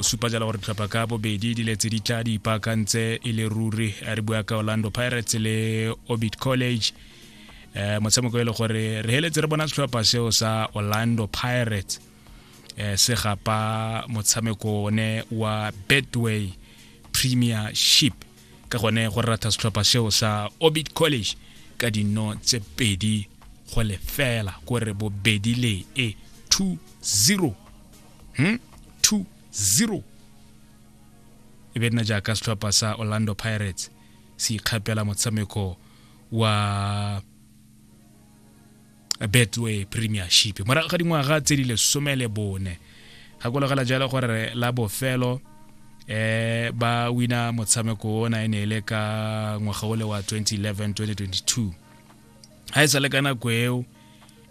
O supa jalo gore ditlhopha ka bobedi di letse di tla di ipaakantse e le ruri re bua ka orlando pirates le orbit college eh motshameko e le gore re heletse re bona setlhopha seo sa orlando pirates eh se gapa motshameko one wa betway premiership ka gone go ratha setlhopha seo sa orbit college ka dino tse pedi go lefela kore bobedi le e 2-0 hmm? 2-0 e be nna jaaka setlhopha sa orlando pirates se ikgapela motshameko wa betway premiership morago ga dingwaga tse di lesome le bone gakologela jalo gore la bofelo eh ba wina motshameko ona e ne e le ka ngwaga ole wa 2011 2022 ga e sa le ka nako eo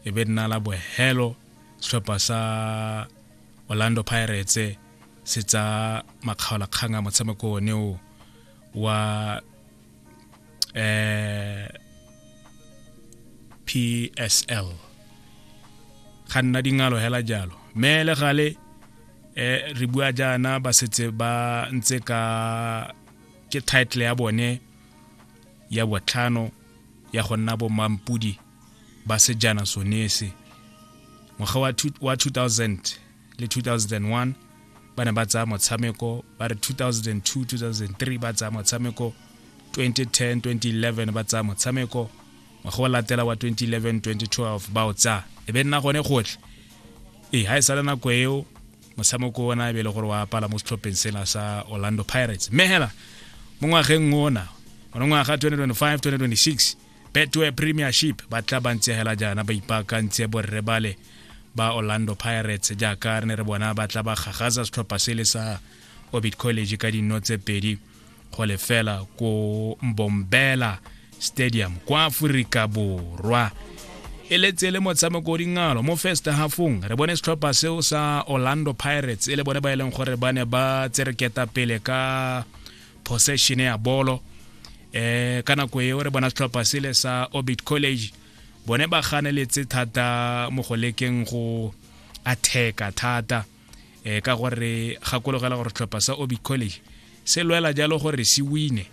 e be nna la bohelo setlhopha sa orlando pirates se tsa makgaolakgang a motshameko one o wa eh PSL ga nna dingalo hela jalo mme le gale eh re bua jaana ba setse ba ntse ka ke title ya bone ya botlhano ya go nna bo mampudi ba sejana sonese ngwaga wa 2000 le 2001 ba ne ba tsaya motshameko ba re 2002 2003 ba tsaya motshameko 2010 2011 ba tsaya motshameko ngwaga wa latela wa 2011 2012 ba o tsaya e be nna gone gotlhe ee ga e sale nako eo motshameko ona e be e le gore wa apala mo setlhopheng sena sa orlando pirates mme hela mo ngwageng ona one ngwaga 2025 2026 betway premiership ba tla ba ntsegela jaana ba ipaakantse borre bale ba orlando pirates jaaka re ne re bona ba tla ba gagaza setlhopha se le sa orbit college ka dino tse pedi go lefela ko mbombela stadium kwa aforika borwa e letse le motshameko o dingalo mo first halfong re bone setlhopha seo sa orlando pirates e le bone ba e leng gore ba ne ba tsereketa pele ka possession ya bolo eh ka nako eo re bona setlhopha sele sa orbit college bone ba ganeletse thata mo go lekeng go atheka thata eh ka gore gakologela gore setlhopha sa orbit college se lwela jalo gore se wine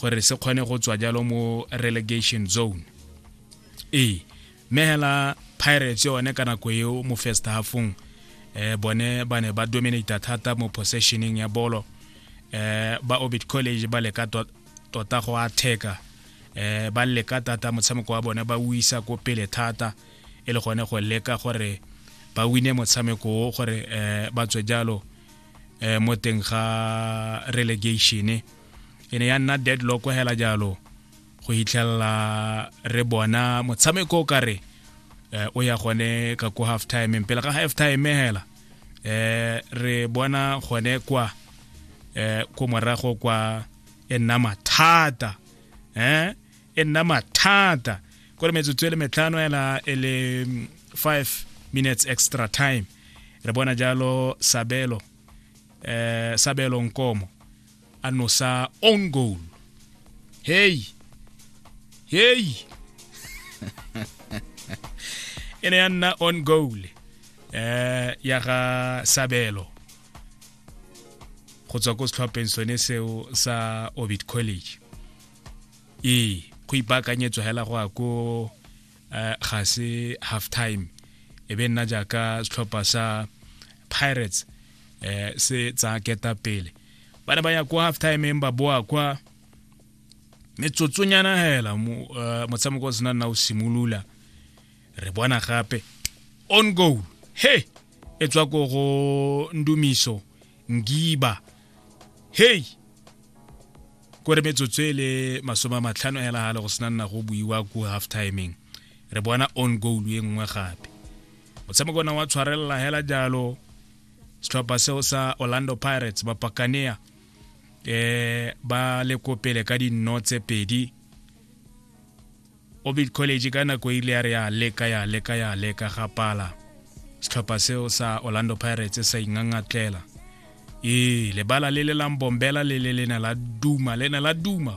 gore se kgone go tswa jalo mo relegation zone ee mme hela pirates yone ka nako eo mo first halfong eh bone ba ne ba dominata thata mo possessioning ya bolo eh ba orbit college ba leka tota go atheka eh ba leka thata motshameko wa bone ba o isa ko pele thata e le gone go leka gore ba wine motshameko o gore eh ba tswe jalo eh mo teng ga relegation e ne ya nna deadlock hela jalo go hitlhelela re bona motshameko o kare eh, o ya gone ka ko half time pele ga half time hela eh re bona gone kwa eh ko morago kwa e nna mathata eh e nna mathata ko re metsotso e le metlhano hela e le 5 minutes extra time re bona jalo sabelo eh sabelo nkomo anosa own goal hey hey e ne ya nna on goal eh ya ga sabelo go tswa ko setlhopheng sone seo sa orbit college ee go ipaakanyetswa hela go ya ko uh, ga se half time e be nna jaaka setlhopha sa pirates eh se tsa keta pele ba ne ba ya kwa half time ba boa kwa metsotsonyana hela eh, motshameko o sena nna o simolola re bona gape on goal he e tswa ko go ndumiso ngiba hey ko re metsotso e le masome a matlhano hela gale go sena nna go buiwa ko half timing re bona on goal e nngwe gape motshameko ona wa tshwarelela hela jalo setlhopha seo sa orlando pirates ba pakanea um eh, ba le ko pele ka dinno tse pedi Orbit College ka nako e ile ya re ya leka ya leka ya leka ga pala setlhopha seo sa Orlando Pirates sa ingangatlela ee lebala le le lang bombela le le lena la duma le ne la duma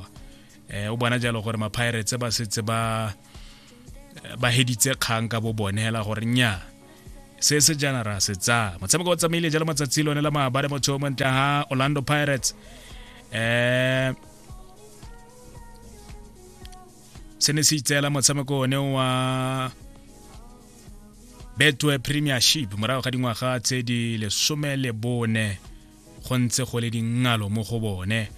eh o bona jalo gore ma-pirates ba setse ba ba heditse kgang ka bo bone hela gore nya se se jana ra se tsaya motshameko o tsamaile jalo matsatsi lone la maabare motho o montle ha Orlando Pirates eh se ne se itseela motshameko one wa betwe premiership morago ga dingwaga tse di lesome le bone go ntse go le dingalo mo go bone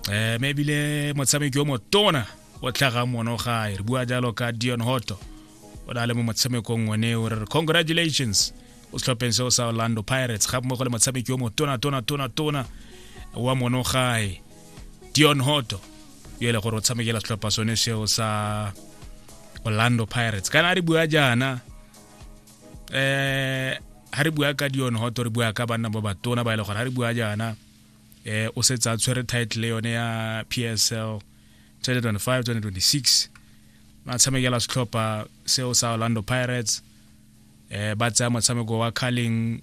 um me ebile motshameki yo motona o tlhaga mono gae re bua jalo ka dion hoto o na le mo motshamekong one o re re congratulations o setlhopheng seo sa orlando pirates ga mmogo le motshameki yo motona tona tona tona wa mono gae dion hoto yo e le gore o tshamekela setlhopha sone seo sa orlando pirates kana a re bua jaana um ha re bua ka dion hoto re bua ka banna ba batona ba e le gore ha re bua jaana um o setse a tshwere title yone ya p s l 2025 2026 ba tshamekela setlhopha seo sa orlando pirates um ba tsaya motshameko wa carling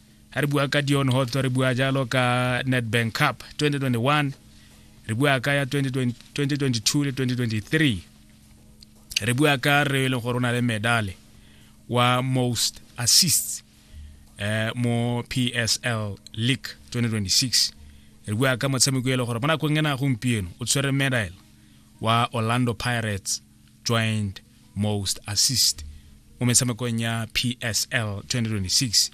ga re bua ka dion hot re bua jalo ka nedbank cup 2021 re bua ka ya 2022 le 2023 re bua ka re e leng gore o na le medale wa most assists eh, mo psl league 2026 re bua ka motshameko e le gore mo nakong e na gompieno o tshwere medal wa orlando pirates joint most assist mo metshamekong ya psl 2026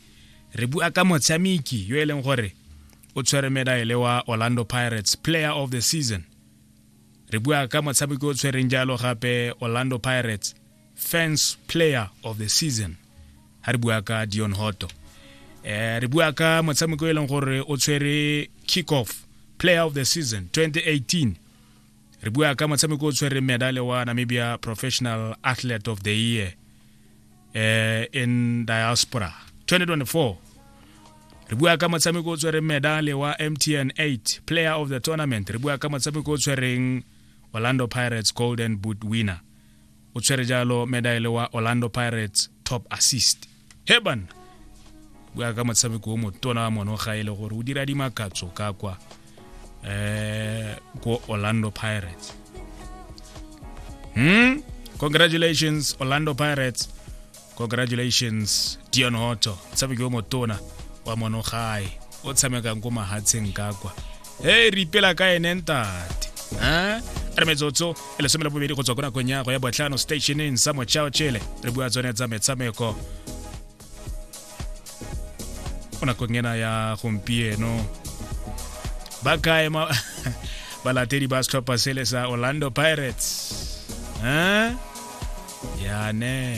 re bua ka motshameki yo e leng gore o tshwere medaele wa orlando pirates player of the season re bua ka motshameki o tshwereng jalo gape orlando pirates fans player of the season ha re bua ka dion hoto eh re bua ka motshameko e leng gore o tshwere kick off player of the season 2018 re bua ka motshameko o tshwereng medale wa namibia professional athlete of the year uh, in diaspora 2024 re bua ka motshameko o tshwereng medale wa mtn 8 player of the tournament re bua ka motshameko o tshwereng orlando pirates golden boot winner o tshwere jalo medaele wa orlando pirates top assist he banna bua ka motshameko o motona wa mono ga e le gore o dira dimakatso ka kwa eh ko orlando pirates hmm congratulations orlando pirates congratulations dion hoto tshameki o motona wa monogae o tshamekang ko mahatsheng ka kwa hey re ipela ka ene ntate a re metsotso e lesome le bobedi go tswa ko nakong ya go ya botlhano stationeng sa mochao chele re bua tsone tsa metshameko mo nakong ena ya gompieno ba kae ma balatedi ba setlhopha sele sa orlando pirates eh? yane